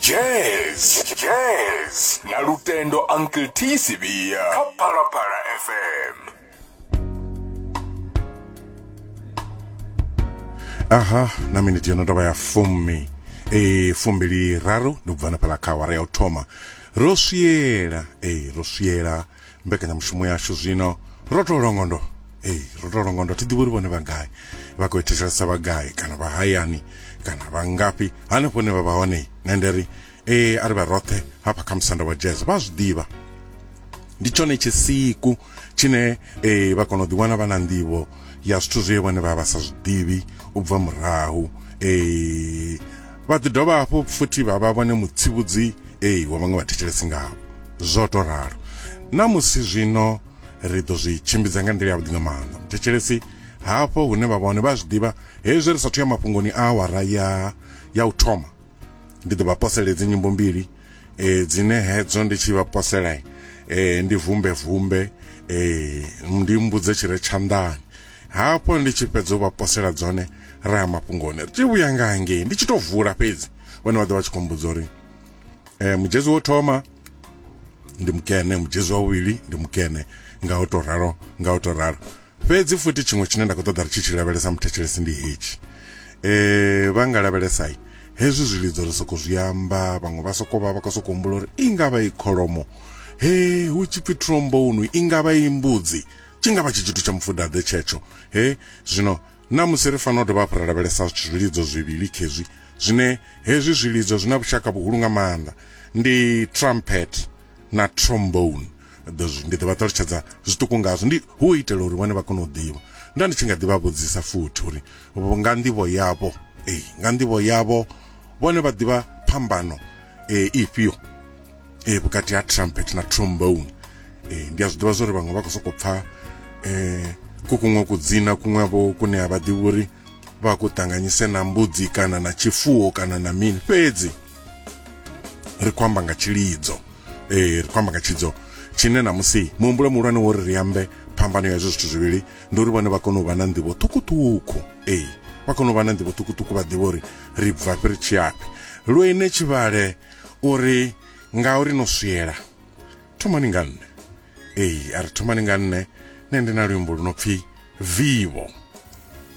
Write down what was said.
jazz jazz na lutendo uncle t sibia kha phalaphala fm aha na miniti yono tovha ya fumi e fumbili raru ndi kubvana phala kha awara ya u thoma ro swiela e ro swiela mbekanyamushumo yashu zwino ro to longondo ee ro to longondo thi ḓivhi uri vhone vha gai vha khou thetshelesa vha gai kana vha hayani kana vha ngafhi hanefho ne vha vha hone nṋe ndi ri ee a ri vha roṱhe hafha kha musanda wa jazz vha zwi ḓivha ndi tshone tshisiku tshine ee vha kona u ḓiwana vha na nḓivho ya zwithu zwe vhone vha vha sa zwi ḓivhi u bva murahu ee vha ḓi dovha hafhu futhi vha vha vhone mutsivhudzi ei wa vhaṅwe vhathetshelesi ngao zwo to ralo na musi zwino ri ḓo zwi tshimbidza nga nḓila yavhuḓi nga maanḓa muthetshelesi hafho hune vha vhone vha zwi ḓivha hezwi ri sathu ya mafhungoni a awara ya ya u thoma ndi ḓo vha posela edzi nyimbo mbili e, dzine hedzo ndi tshi vha posela e, ndi vumbe vumbe e, ndi mbudze tshi re tshanḓani hafho ndi tshi fhedza u vha posela dzone ra ya mafhungoni ri tshi vhuya nga hangei ndi tshi to vula fhedzi vhone vha ḓo vha tshi khombudza uri eh mujezi wo thoma ndi mukene mujezi wa vhuvhili ndi mukene nga u to ralo nga u to ralo fhedzi futhi tshiṅwe tshine nda khou ṱoḓa ri tshi tshi lavhelesa muthetshelesi ndi hetshi eh vha nga lavhelesai hezwi zwilidzo ri soko zwi amba vhaṅwe vha soko vha vha khou soko humbula uri i nga vha i kholomo he hu tshi pfi trombone i nga vha i mbudzi tshi nga vha tshi tshithu tsha mufudaḓe tshetsho he zwino Ṋamusi ri fanela u dovha hafhu ra lavhelesa zwilidzo zwivhili khezwi zwine hezwi zwilidzo zwi na vhushaka vhuhulu nga maanḓa, ndi trumpet na trombone. Ndi ḓo vha ṱalutshedza zwiṱuku ngazwo, ndi hu u itela uri vhone vha kone u ḓivha. Nda ndi tshi nga ḓi vha vhudzisa futhi uri nga nḓivho yavho, ee, nga nḓivho yavho vhone vha ḓivha phambano ifhio. eh, vhukati ha trumpet na trombone eh, ndi a zwi ḓivha zwori vhaṅwe vha khou sokou pfha eh, ku kuṅwe kudzina kuṅwe vho kune a vha ḓivhi uri vha ku ṱanganyise na mbudzi kana na tshifuwo kana na mini fhedzi ri khou amba nga tshilidzo eh, ri khou amba nga tshilidzo tshine na musi muhumbulo muhulwane wo ri ri ambe phambano ya hezwo zwithu zwivhili ndi uri vhone vha kone u vha na nḓivho ṱhukhuṱhukhu ee vha kone u vha na nḓivho ṱhukhuṱhukhu vha ḓivha uri ri bvafhi ri tshiyafhi lwene tshivhale O ri, Ngauri no swiela, thomani nga nṋe. Ee, a ri thomani nga nṋe, nṋe ndi na luimbo lu no pfi Vivo.